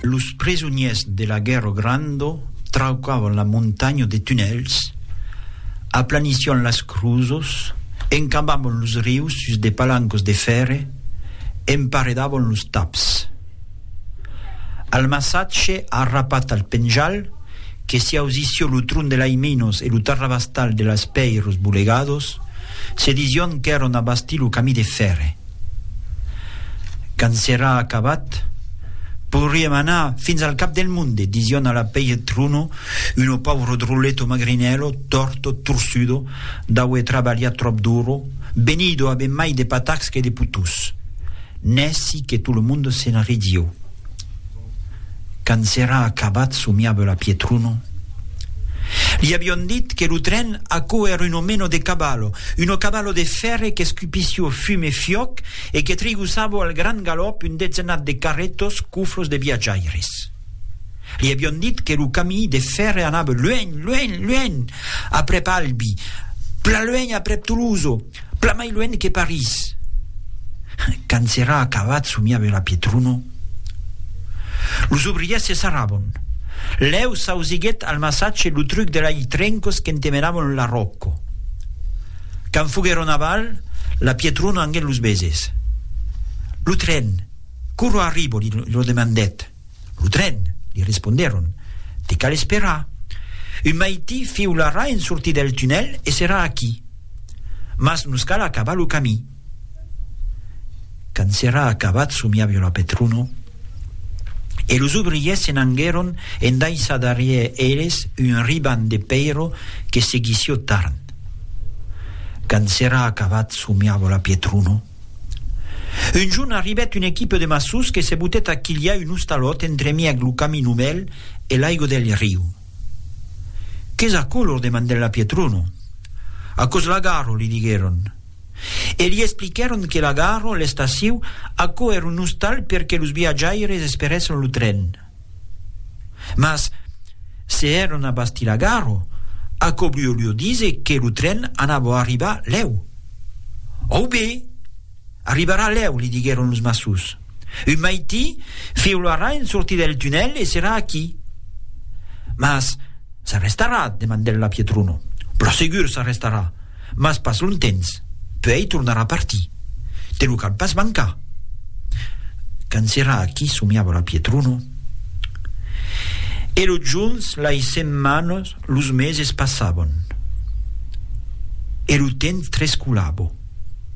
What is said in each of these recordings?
Los presonièrs de la guèrra granda traucavan la montanha de tunèls, aplanissián las cruzas, encabavan los rius sus de palancas de fèrre, emparedavan los taps. Al massatge arrapat al penjal, que s'i ausissió lo tron de l'Aiminos e lo tarrabastal de las pèiras bolegadas, se disión qu'èran a bastir lo camí de fèrre. Quand serà acabat, pourriem anar fins al cap del monde, dision a la pèir Truno, uno pauvro drolleto magrinèlo, torto, torsudo, d'aue trabalhat tròp duro, benido a ben mai de patacs que de putús. Nèci que tot lo monde se'n ridió. Quand s'èra acabat, somiava la Pietruno. Li avion dit que lo tren, aquò èra un omeno de caballo, uno caballo de fèrre qu'escupissió fum e fiòc e que trigossavo al gran galòp un dezenat de carretos cuflos de viatjaires. Li avion dit que lo camí de fèrre anava luènh, luènh, luènh, aprèp Albi, plan luènh aprèp Toloso. Plan mai luènh que París. Quand s'èra acabat somiave la Pietruno. Los obrièrs se sarrabon. Lèu s'ausiguèt al massatge lo truc de lai trencos qu'entemenabon la Rocco. Quand foguèron aval, la Pietruno anguèt los beses. Lo tren, quora arribo? li lo demandèt. Lo tren, li respondèron, te cal esperar. Un maití fiularà en sortir del tunèl e serà aquí. Mas nos cal acabar lo camí. Quand s'èra acabat somiavió la Petruno e los obriers se n'anguèron en daissar darrièr eles un riban de pèiro que seguissió Tarn. Quand s'èra acabat somiavió la Pietruno. Un jorn arribèt una equipa de maçons que se botèt a quilhar un ostalòt entremièg lo camin umèl e l'aiga del riu. Qu'es aquò? lor demandèt la Pietrono. Aquò's l'agarro, li diguèron. E li expliquèron que l'agarro, l'estaciu, aquò èra un ostal perque los viatjaires esperèssen lo tren. Mas se èron a Bastilagarro, aquò volió díser que lo tren anava arribar lèu. Au be! Arribarà lèu, li diguèron los maçons. Un maití fiularà en sortir del tunèl e serà aquí. Mas s'arrestarà? demandèt la Pietruno. Pro segur s'arrestarà! Mas pas longtemps, puèi tornarà partir. Te lo cal pas mancar. Quand serà aquí, somiava la Pietruno. E los jorns, lai setmanas, los meses passavan. E lo temps trescolava.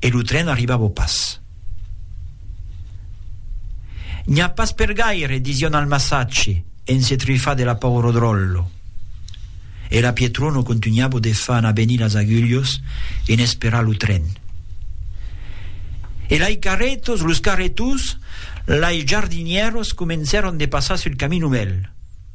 e lo tren arribava pas. N'i a pas per gaire, disión al massatge, en se trufar de la paur o dròllo. E la Pietrono contunhava de far anar venir las agulhos en esperar lo tren. E lai carretos, los carretons, lai jardinieros comencèron de passar sul camin novèl.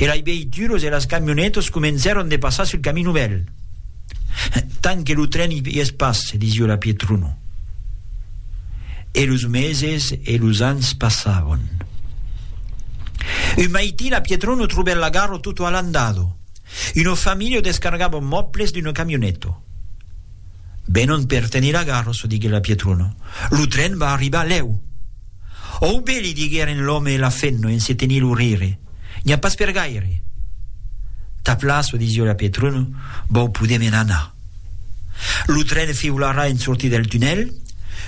e lai veituros e las camionetos comencèron de passar sul camin novèl. Tant que lo tren i es pas, se disió la Pietruno. E los meses e los ans passavon. Un maití la Pietruno trobèt la garo tutto allandado. Uno familio descargavon mòbles d'uno camioneto. Venon per tenir la garrosa, diguèt la Pietrona. Lo tren va arribar lèu. Òu be, li digueren l'òme e la femna en se tenir lo rire. N'i a pas per gaire. Ta plaça, disió la Pietrona, vòu poder me'n anar. Lo tren fiularà en sortir del tunèl,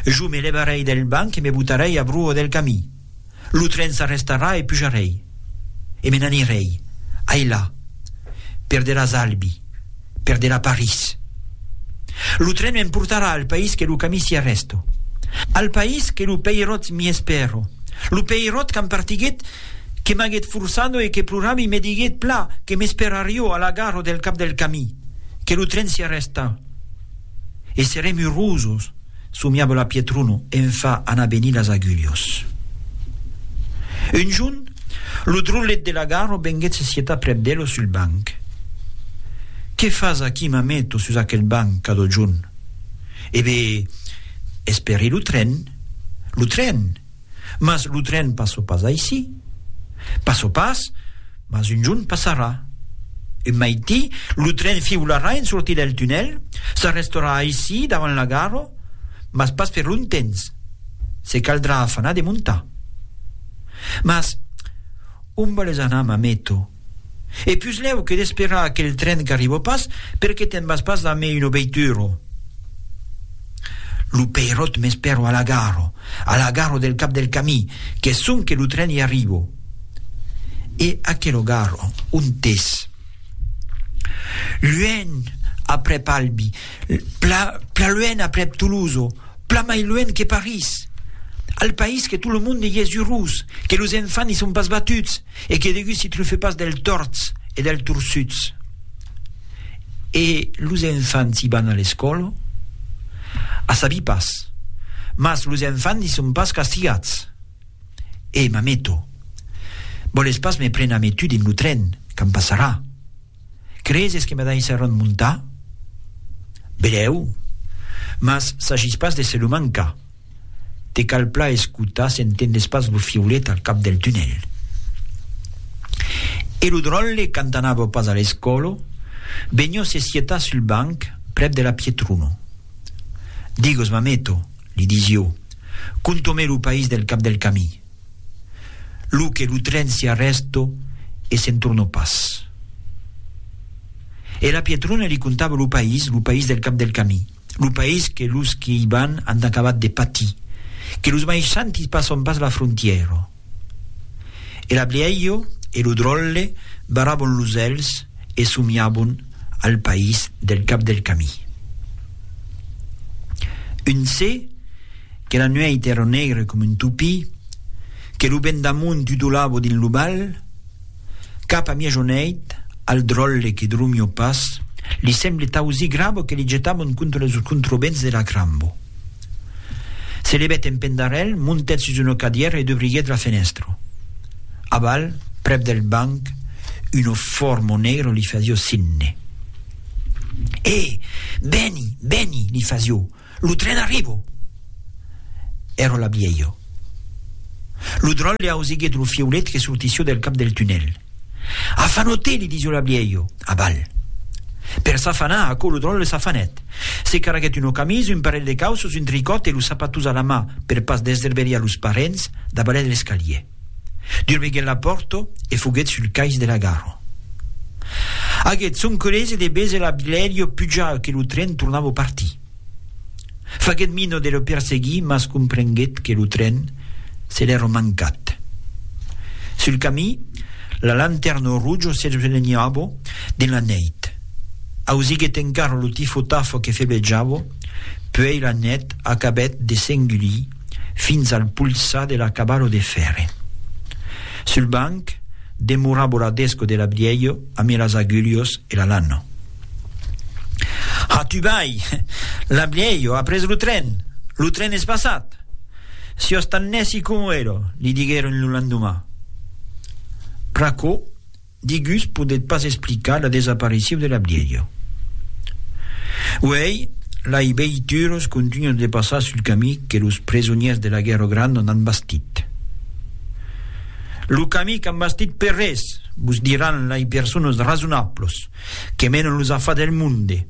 jo me levarèi del banc e me botarèi a broa del camí. Lo tren s'arrestarà e pujarèi, e me n'anirèi. Ai la. Perderàs Albi. Perderà París. Lo tren me'n portarà al país que lo camí s'i arrèsto. Al país que lo peiròt m'i espèro. Lo peiròt qu'am partiguèt, que m'aguèt forçado e que plorava i me diguèt pla que m'esperarió a la gara del cap del camí, que lo tren s'i arrèsta. E serem urosos. somiava la Pietruno en fa anar venir las agulhos. Un junh, lo drollet de la Garo venguèt se sietar prèp d'elo sul banc. Qué fas aquí, mameto, sus aquel banc, cadò junh? E bé, esperri lo tren. Lo tren! Mas lo tren passò pas aicí. Passò pas, mas un jorn passarà. Un maití, lo tren fiularà en sortir del tunèl, s'arrestorà aicí davant la gara, mas pas per longtemps, se caldrà afanar de montar. Mas, ont vòles anar, mameto? E puslèu que d'esperar aquel tren qu'arribo pas, per qué te'n vas pas amé una veitura? Lo peiròt m'espèro a la gara, a la gara del cap del camí, qu'es sonque lo tren i arribo. E aquela gara, ont es? Luènh, aprèp Albi, pla, pla luènh aprèp Toulouse, pla mai luènh que París. Al país que tot lo monde i es urós, que los enfants i son pas batuts, e que degut si trufe pas del torts e del torçuts. E los enfants i van a l'escòla? A sabi pas. Mas los enfants i son pas castigats. E mameto. Vòles pas me pren ame tu dins lo tren, quand passarà? Creses que me daissaràn montar? Belèu. Mas s'agís pas de se lo mancar. Te cal plan escotar s'entendes pas lo fiolet al cap del tunèl. E lo dròlle quand anava pas a l'escòlo benhò se sietat sul banc prèp de la Pietruno. Digos mameto, li disio, conto-me lo país del cap del camí. Lo que lo tren si arrèsto e se'n tornò pas. E la Pietruna li contava lo país, lo país del cap del camí. lo país que los que i van an acabat de patir, que los maishantis passon pas la frontièra. E la blièia e lo dròlle barabon los elhs e somiabon al país del cap del camí. Un se que la nuèit èra negre com un topí, que lo vent d'amont tutolava dins lo val, Cap a miajoneit, al dròlle que drumio pas, li semble tausir grabo que li jetabon contra los controvents de la crambo. Se levèt en pendarèl, montèt sus una cadièra e dubriguèt la fenèstra. Aval, prèp del banc, una forma negra li fasió signe. È! Vèni, vèni! li fasió. Lo tren arribo! Ero la Bielho. Lo dròl le ausiguet lo fieulet que sortissió del cap del tunèl. Afanote! li disió la Bielho. Aval. Per s'afanar, aquò lo dròl s'afanèt. Se carreguèt una camisa, un parelh de cauços, un tricòt e los sapatons a la mà, per pas desderberiar los parents, davalèt l'escalier. Durveguèt la pòrto e foguèt sul cais de la gara. Aguèt son colese de bese la Bilèrio puja que lo tren tornava o partir. Faguèt mina de lo perseguir mas comprenguèt que lo tren se l'èra mancat. Sul camí, la lantèrna roja s'eslenhava dins la nèit. Ausiguèt encara lo tifo-tafo que febejava, puèi la net acabèt de s'engulir, fins al polsar de la caballo de fèrre. Sul banc demorabo la desco de l'abriello amé las agulhos e la lanno. Ha tu vai! L'abriello a pres lo tren! Lo tren es passat! Sios tan nèci como ero, li diguèron lo landumà. Pr'aquò, Digús podèt pas explicar la desaparicion de la bièlha. Uèi, lai veituras contunhan de passar sul camí que los presonièrs de la Guèrra Granda n'an bastit. Lo camí qu'an bastit per res, vos diràn lai personas rasonablas que menan los afars del monde.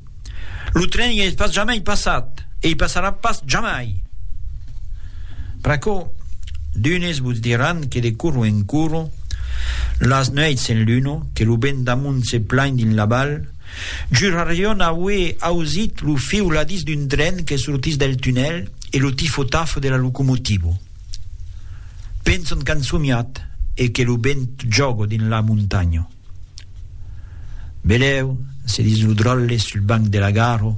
Lo tren i es pas jamai passat e i passarà pas jamai. Pr'aquò, d'unes vos diràn que de coro en coro, las nuèits en luna, que lo vent d'amunt se plain dins la val, jurarion aué ausit lo fiuladís d'un tren que sortís del tunèl e lo tifo-tafo de la locomotiva. Penson qu'an somiat e que lo vent jòga dins la montanha. Velèu, se ditz lo dròlle sul banc de la gara,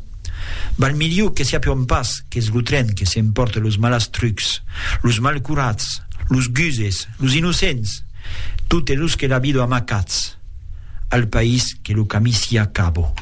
val miliu que siá pion pas qu'es lo tren que s'empòrte los malastrucs, los malcurats, los guses, los innocents, totes los que la vido amacats al país que lo camí siá cabo.